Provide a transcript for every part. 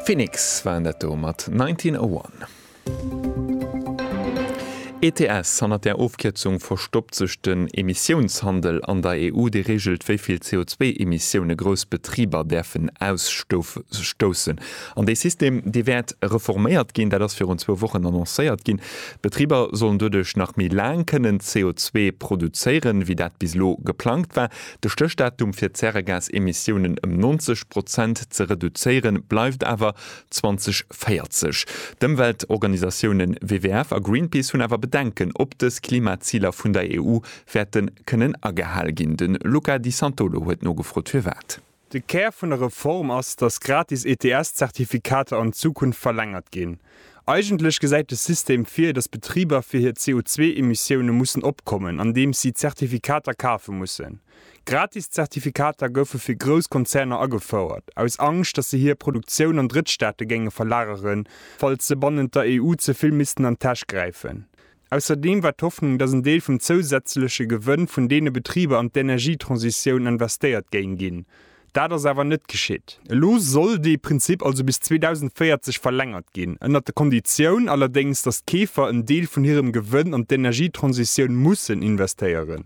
Phoenix waren dat do mat 1901. ETS, Hannert där Ofkierzung verstoppt sech den Emissiounshandel an der EU, dee reegelt, wéi vill CO2-Emissioune grouss Betriber däerfen ausstoussen. An dee System, dee wäert reforméiert ginn, dat ass virun zwou Wochen annoncéiert ginn. D'Betriber sollen doduerch nach méi laang kënnen CO2 produzéieren, wéi dat bis elo geplangt war. De Stéchdatum fir d'Zäregasemissiounen ëm 90 Prozent ze reduzéiere bleift awer 2040. D'Ëmweltorganisatiounen WWF a Greenpeace hunn awer Bedenken, ob dës Klimaziler vun der EU wäerte kënnen agehal ginn. De Luca Di Santolo huet nogefrot, firwat. De Kär vun der Reform ass, datt gratis ETS-Zertifikater an Zukunft verlängert ginn. Eigentlech gesäit de System vir, datt Betriber fir hir CO2-Emissioune mussen opkommen, andeems si Zertifikater kafe mussen. Gratis Zertifikater goufe fir grouss Konzerner agefouert, aus Angscht, datt se hir Produktioun an Drëttstaate géinge verlageren, falls se bannent der EU ze vill missten an d'Täsch gräifen. Ausserdeem war d'Hoffnung, datt en Deel vum zousätzleche Gewënn vun deene Betriber an d'Energietransitioun investéiert géing ginn. Dat ass awer net geschitt. Elo soll dee Prinzip also bis 2040 verlängert ginn, ënnert der Konditioun allerdéngs, datt d'Keefer en Deel vun hirem Gewënn an d'Energietransitioun mussen investéieren.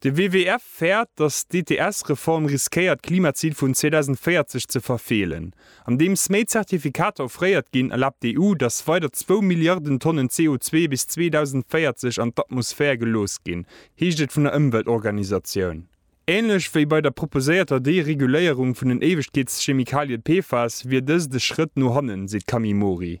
De WWF fäert, datt d'ETS-Reform riskéiert d'Klimazil vun 2040 ze verfeelen. Andeems méi Zertifikater offréiert ginn, erlaabt d'EU, datt weider zwou Milliarden Tonnen CO2 bis 2040 an d'Atmosphär gelooss ginn, heescht et vun der Ëmweltorganisatioun. Änlech wéi bei der proposéierter Dereguléierung vun den Éiwegkeetschemikalie PFAS wier dëst e Schrëtt no hannen, seet d'Camille Mori.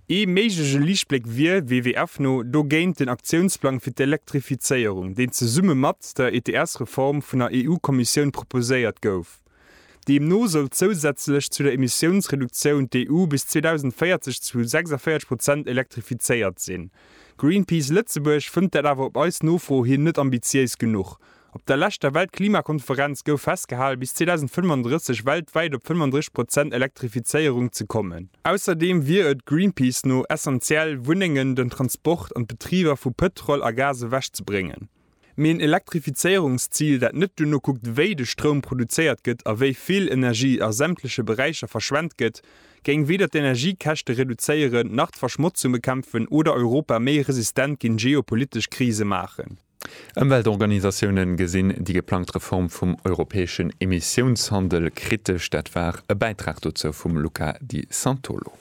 Ee méiglege Liichtbléck wier, WWF no, dogéint den Aktiounsplang fir d'Elektrifizéierung, deen zesumme mat der ETS-Reform vun der EU-Kommissioun proposéiert gouf. Deemno soll zousätzlech zu der Emissiounsreduktioun d'EU bis 2040 zu 46 Prozent elektrifizéiert sinn. Greenpeace Lëtzebuerg fënnt dat awer op eis Nofro hin net ambitiéis genuch, Op der leschter Weltklimakonferenz gouf festgehalen, bis 2035 weltwäit op 35 Prozent Elektrifizéierung ze kommen. Ausserdeem wier et Greenpeace no essentiell, Wunnengen, den Transport an d'Betriber vu Pëtrol a Gas ewech ze bréngen. Mee en Elektrifizéierungszil, dat net duerno kuckt, wéi de Stroum produzéiert gëtt a wéi vill Energie a sämtleche Beräicher verschwent gëtt, géing weder d'Energiekäschte reduzéieren, nach d'Verschmotzung bekämpfen oder Europa méi resistent géint geopolitesch Krise maachen. Ëmweltorganisatioune gesinn déi geplangt Reform vum europäeschen Emissiounshandel kritesch. Dat war e Bäitrag dozou vum Luca Di Santolo.